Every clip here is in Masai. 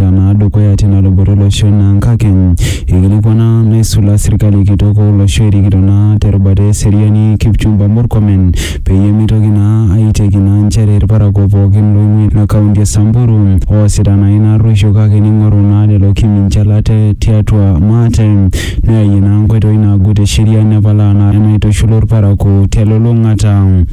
eloito naa dukuya tina luboto olosho naa nkake eikilikuana naisula sirkali kitok o olosho erikito naa te rubata e seriani Kipchumba Murkomen peyie meitoki naa aiteki naa nchere ilparakuo pookin looing'ua ina kaunti e Samburu oosita naa ina arruosho kake neing'oru naa lelo kiminjal ate tiatua maate neyayie naa nkoitoi naagut e sheria nepalaa naa enaitushulu ilparakuo te lulung'ata.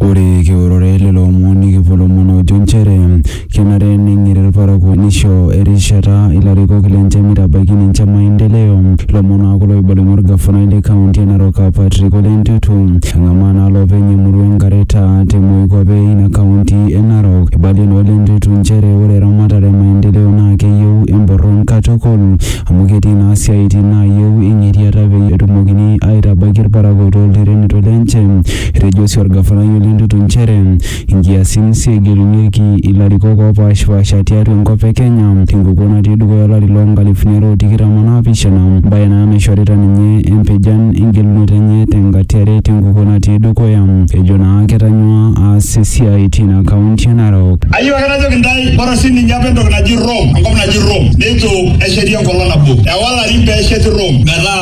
Ore kiurore lelo omon nikipuo lomon oojo nchere kenare neng'iri ilparakuo neisho erishata ilarikok lenche meitabaiki ninche maendeleo. Lomon naa kulo oibalunye olgafanai le kaunti e Narok aa Patrick Ole Ntutu. Eng'amaa naa lopeny emurua e Ngareta te moikuape eina kaunti e Narok. Eibalie naa Ole Ntutu nchere ore eramatare e maendeleo naa keyieu emborron katukul amu ketii naa siaaitin naayieu eng'iriata peyie etumokini aitabaiki ilparakuo too lterenito lenche. Etejo sii olgafanai Ole Ntutu nchere nkiasin sii egelunyeki ilarikok oopaashipaasha tiatua enkop e Kenya te nkukuo natii dukuya olari loo nkalifuni are o tikitam o naapishana, embae naa naishorita ninye empijan engelunoto enye te nkata e are te nkukuo natii dukuya, ejo naa ketanyua aas esiai teina kaunti e Narok. Ayieu ake najoki intae bora sii ninye apa entoki naji Rome, enkop naji Rome, neitu esheti enkolong nabo. Ewa ilarin pee esheti Rome metaa.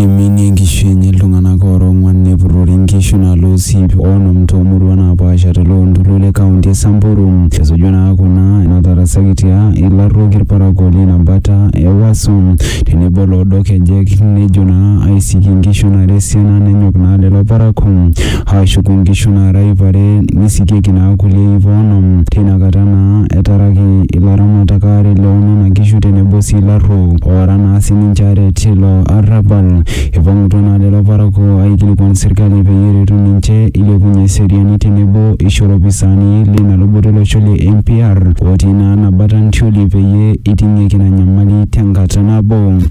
Eiminie inkishu enye iltung'anak oora ong'uan nepurrori inkishu nalo Osiip o onom too muruan naapaasha te loo ntoluo le kaunti e Samburu. Esuju naa kuna inatarasakitia ilarruok ilparakuo leina bata e Waso tenebo Loodok Kejek nejo naa aisik inkishu nara esiana nenyok naa lelo parakuo aashuku inkishu naara iip are neisikieki naa kulie iip oonom. Teina kata naa etaraki ilaramatak aare loo nena kishu tenebo sii ilarruok oora naa sii ninche aare tilo arrabal. Eipang'utua naa lelo parakuo aaikilikuan serkali peyie eretu ninche eilepunye eseriani tenebo eisho ilopisaani leina luboto olosho le NPR ootii naa ena bata ntioli peyie eiting'ieki ina nyamali tenkata nabo.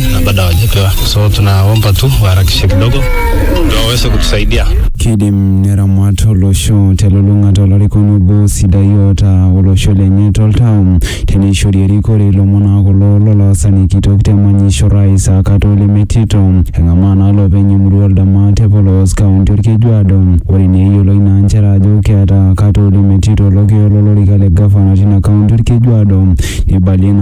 na bado hawajapewa, so tunaomba tu waharakishe kidogo ndio waweze kutusaidia. Kidim neramat olosho telulung'ata olarikoni obo sidai oota olosho lenye toltau teneishori erikore ilomon aa kulo loloasani kitok te manyisho rais akata olemetito eng'amaa naa loopeny emurua oldama te polos kaunti olkejuado ore naa eyioloi naa nchere ajo keeta akata olemetito olokio lolorika le gavana tina kaunti olkejuado neibalie naa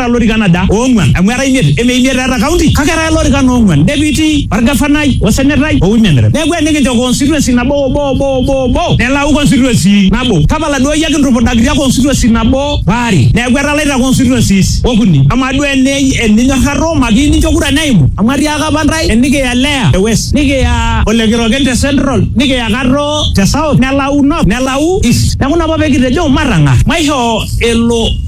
eeta lorikan aja? Oong'uan. Amu era imiet. Eme imiet eeta county kake era lorikan oong'uan, deputy, olgafanai, osenetai, o women rep. Neaku enikincho constituency nabo obo obo obo obo nelau constituency nabo. Tapala duo iyie ake intupudakita constituency nabo waare. Neaku etalaita constituencies okuni. Amaa duo eninyorrarro makiyieu nincho kura neimu? Amu atiaaka apa ntae enikiya Leah te west, nikiya Ole Kiroken te central, nikiya Kato te south, nelau north, nelau east. Neaku ina apa pee kitejo matang'ar maishoo elo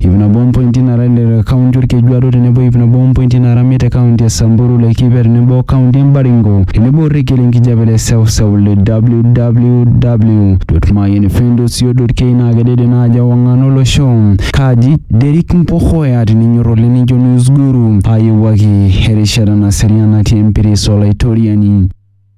iip nabo ompointi naara ile te kaunti Olkejuado tenebo iip nabo ompointi naara imiet te kaunti e Samburu, Laikipia tenebo o kaunti e Baringo tenebo orekia le nkijape le seuseu le www.mayian fm dot co dot ke naa kedede ina aji ewang'an olosho. Kaaji Derrick Mpokoya tininyor oleng nincho News Guru aayewuaki erishata naserian natii empiris o Laitoriani.